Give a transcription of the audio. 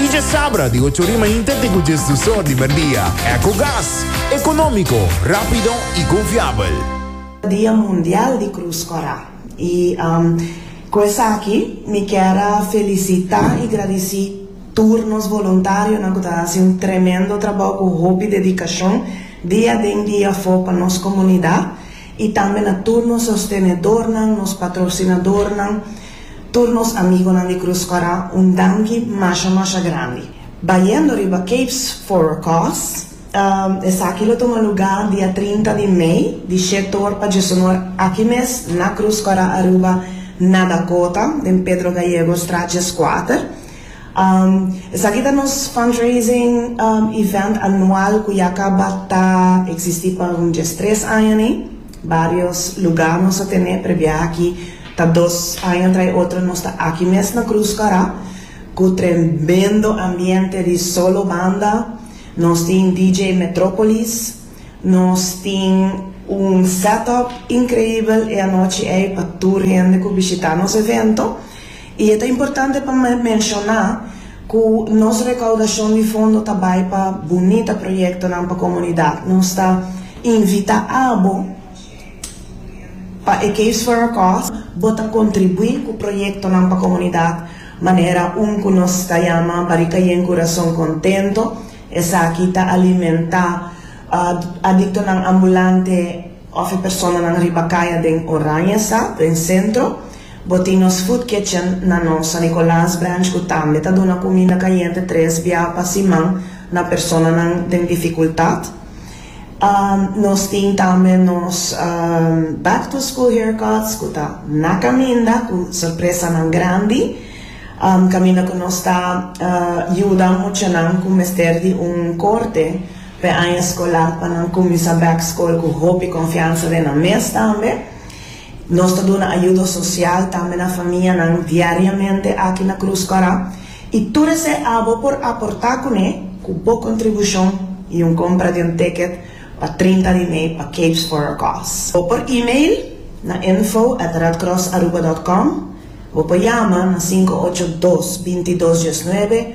Y dje sabra di ocho ori mainta te cu dje sdusor di merdia. Ecogas, economico, rapido y confiabel. Dia Mundial di Cruz Corá. Y cu esaki mi kier a felicita y gradici tur nos voluntarionan cu ta haci un tremendo trabao cu hopi dedicacion dia den dia afo pa nos comunidad. y tambe na tur nos sostenedornan, nos patrocinadornan, tur nos amigonan di Cruz Squara un danki masha masha grandi. Bayendo riba Capes for a Cause, esaki lo tuma luga dia trinta di mei di she toor pa djesonor aki mes na Cruz Squara Aruba na Dakota den Pedro Gallego straat djeskuater. Esaki ta nos fundraising event anual cu ya caba ta existi pa un dies tres aña ni. Varios luga nos a tene, prebia aki ta dos aña trai otro nos ta aki mes na Cruzcarra cu tremendo ambiente di solo banda. Nos tin DJ Metropolis, nos tin un set up increibel e anochi ey pa tur hende cu bishita nos evento. I e ta importante pa menshoná ku nos rekaudashon di fondo ta bai pa bunita proyektonan pa komunidat. Nos ta invitá abo pa e Caves for a Cause bo ta kontribuí ku proyektonan pa komunidat manera un ku nos ta yama Barika Yen Kurason Kontento, esaki ta alimentá adiktonan ambulante. Of e personanan riba kaya den Oranjestad, den sentro. Bo tin nos food kitchen na nos San Nicolas branch ku tambe ta duna kuminda kayente tres bia pa siman na personanan den difikultat. Nos tin tambe nos back to school haircuts ku ta na kaminda ku sorpresanan grandi kaminda ku nos ta yuda muchanan ku mester di un korte. P'e aña skolar pa nan kuminsá bèk skol ku hopi konfiansa den nan mes tambe. Nos ta duna ayudo sosial tambe na famianan diariamente aki na Krus Kòrá i tur esei abo por aportá kuné ku bo kontribushon i un kompra di un ticket pa trinta di mei pa Capes for a Cause. Bo por email na info at redcrossaruba dòt com. Bo por yama na sinku ocho dos, binti dos diesnuebe.